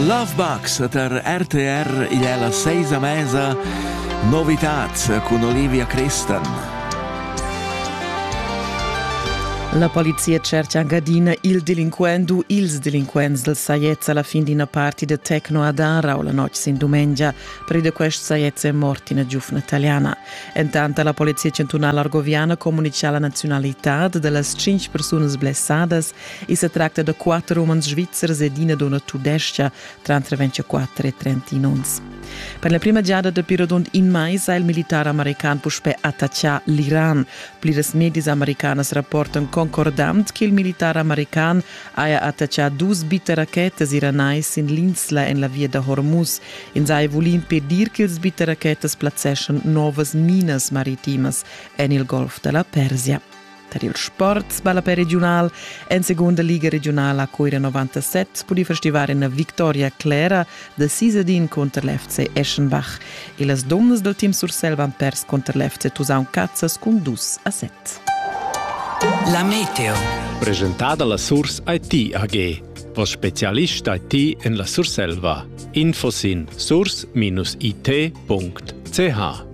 Lovebox per RTR igl è la seisa mesa Novitad cun Olivia Christen. La polizia cerca anche adina il delinquent u ils delinquents del Saiez alla fin d'una parti de Tecno ad Ara o la notte sin dumengia, pride quest Saiez è morti una giufna italiana. Intanto la polizia centunale argoviana comunica alla nazionalità delle cinque persone blessadas I sa tracta da quatter umans svizzers ed ina dunna tudestga tranter 24 e 31 onns. Per la prima giada dapi rodund in mais ha il militar american puspè attaccà l'Iran. Pliras medias americanas rapportan concordant che il militar american haja attaccà dus bitterrachetas iranais sin l'insla en la via da Hormuz. Ins haja vulì impedir ch'ils bitterrachetas plazzeschan novas minas maritimas en il golf da la Persia. Tar il sport ballape regiunal en segunda liga regionala Cuira 97 pudì festivar ina victoria clera da Sisadin cunter l'FC Eschenbach e las donnas dal team Sursel van pers cunter l'FC Tusaun Cazzas cun dus a set. La Meteo. Presentada la Surs IT AG. Vos specialist IT en la Surselva. Info sin surs-it.ch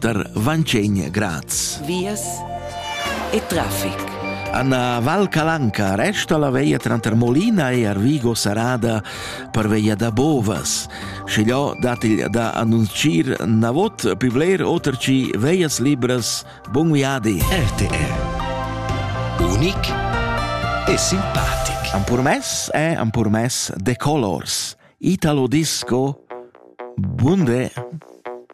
der Vancegna Graz. Vias e traffic. Anna Valcalanca resta la veia tranter Molina e Arvigo Sarada per veia da Bovas. Schigliò dat il da annuncier navot più bler oter ci veias libras. Bun viadi! RTR. Unic e simpatic. Am purmess e am purmess de colors. Italo Disco. Bunde!